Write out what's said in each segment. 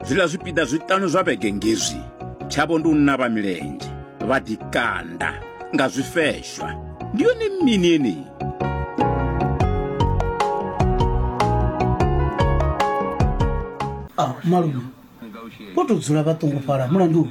zwiḽa zwipiḓa zwiṱanu zwa vhege ngezwi tshavho ndi u navha milenzhe vha ḓikanda nga zwifeshwa ndi yone mini yeneyi ah, malume vho tou dzula vha ṱungufhala mulandu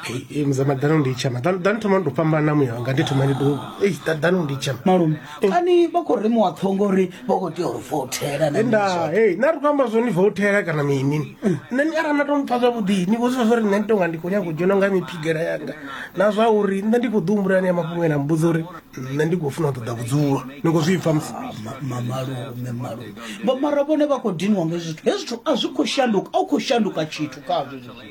Hey, mzee madhani undichema dhani dhani tuma ndopambana mwe wanga nditi mani do hey dha- dhani undichema malume kani vha khou ri muwaṱhongo uri vha khou tea uri vothela na enda mizwa. hey nari kwamba zwo ni votela kana mini nṋe ni arali na to mpfa zwavhuḓi ni vhozisa zwo ri nṋe ndi tonga ndi khou nyanga u dzhena nga miphigela yanga na zwa uri nṋe ndi khou ḓi humbula ni ya mafhungo ena mbudza uri nṋe ndi khou funa u ṱoḓa vhudzulo ni khou zwi pfa musi Ma- ma- malume malume Vha- mara vhone vha khou diniwa nga hezwi zwithu hezwi zwithu a zwi khou shanduka a u khou shanduka tshithu khazwo hezwi zwithu.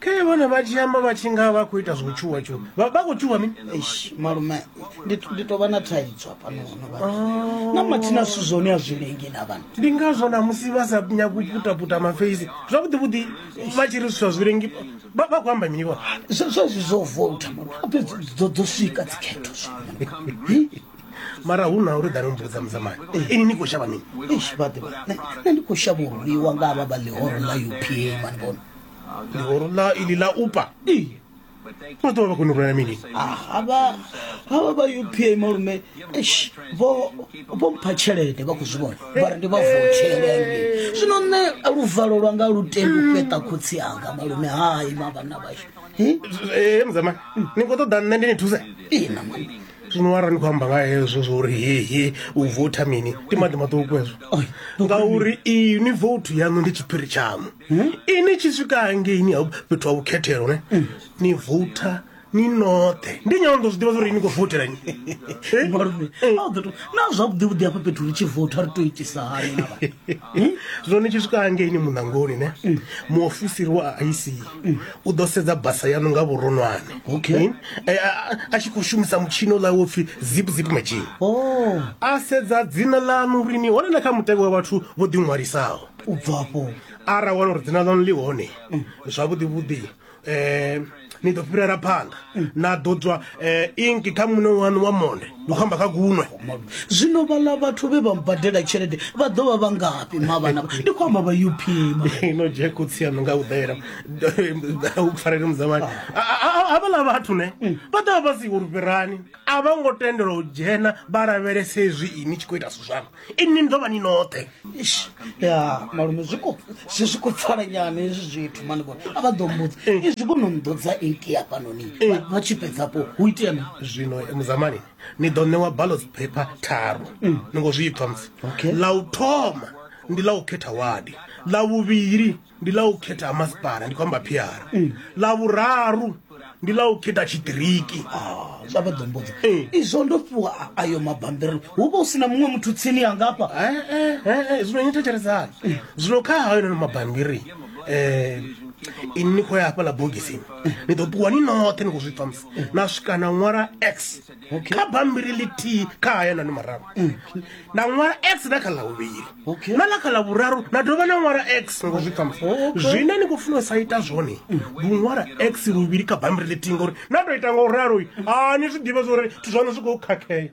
khe vhone vha tshi amba vha tshi nga vha khou ita zwo tshuwa tshuwa vha vha khou tshuwa mini Eish, malume ndi ndi tou vha na thaidzo hafhano hone vha Oh. na mathina zwithu zwone a zwi lengi na vhana ndi ngazwo na musi vha sa nyagi u putaputa mafeisi zwavhuḓi vhuḓi vha tshi ri zwithu a zwi lengi vha vha khou amba mini vhone Zwe- zwezwi zwo vouta malume ape dzo dzo swika dzikhetho zwino mara hu na uri ḓa ni mbudza mudzamani ini ni khou shavha mini eish vhaḓivha nṋe ndi khou shavha u rwiwa nga vha vha ḽihoro ḽa upa mani vhona ḽihoro ḽa ili ḽa upa vha ḓovha vha kone u rwela mini havha havha vha u p a malume eish vho vho mpha tshelede vha khou zwi vhona vha ri ndi vha votshele zwino nṋe luvalo lwanga lu tendi u fheṱa khotsi anga malume hai mavhanna vhashu ee mudzamani ni khou ṱoḓa nṋe ndi ni thuse ina malume zwino ara ni khou amba nga hezwo zwo uri hehe u votha mini ndi maḓi maṱuku hezwo ngauri iyi ni voutu yaṋu ndi tshiphiri tshaṋu hmm? ini tshi swika hangeini fhethu ha vhukhethelo ne hmm. ni vouta ni noṱhe ndi nyana ndo zwi ḓivha zwa uri ni khou voutela nyi na zwavhuḓi vhuḓi hafha fhethu ri tshi vouta ri to itisa hani na hmm? zwone tshi swika hangeini muṋangoni ne hmm. muofisiri wa ic hmm. u ḓo sedza basa yanu nga vhuronwane eh, a tshi khou shumisa mutshini ola wo pfhi zip zip machine oh. a sedza dzina lanu uri ni hone na kha mutevhe wa vhathu vho ḓiṅwalisaho u bvafho ara wana uri dzina ḽanu ḽi hone mm. zwavhuḓi vhuḓi um ni ḓo fhirela phanḓa mm. na ḓo tswa um eh, inki kha muṋe wanu wa monde ni khou amba kha gunwe zwino vhala vhathu vhe vha mbadela tshelede vha ḓo vha vha ngafhi mavhana ndi khou amba vha up no jeko tsiano nga u ḓela u farele muzamani havhala ah. vhathu ne mm. vha ḓo vha vha si uri fhirani a vha ngo tendelwa u dzhena vha lavhelese hezwi ini tshi khou ita zwithu zwanu inni ni ḓo vha ni noṱhe ya malume zwi khou si zwi khou pfala nyana hezwi zwithu mani vhone a vha ḓo mbudza eh. izwi kho no mmbudza eighty hafhanoni eh. vha tshi fhedzapo hu itea mi zwino eh, muzamani ni ḓo ṋewa ballots paper tharu mm. ni ngo zwi pfha musi ḽa u thoma ndi ḽa u khetha wadi ḽa vhuvhili ndi ḽa u khetha ha masipala ndi khou amba phiara mm. ḽa vhuraru ndi ḽa u khetha tshiṱiriki ah, zwa vha ḓombodza eh. izwo ndo fhiwa ayo mabambiri hu vha u si na muṅwe muthu tsini ya ngafha eh, eh, zwino ni thetshelesani zwino kha hayo nono mabambiri um ini ni khou ya hafhaḽa bogisini ni ḓo ṱuwa ni noṱhe ni khou zwi pfamisa na swika na ṅwala x kha bambiri ḽithihi kha haya nanu mararu na ṅwala x na kha ḽa vhuvhili na ḽa kha ḽa vhuraru na dovha na ṅwala x ngo zwi pfamsa zwine ni khou funa u sa ita zwone ndi u ṅwala x luvhili kha bambiri ḽithihi ngauri na tou ita nga u ralo a ni zwi ḓivha zwa uri zwithu zwaṋu zwi khou khakhea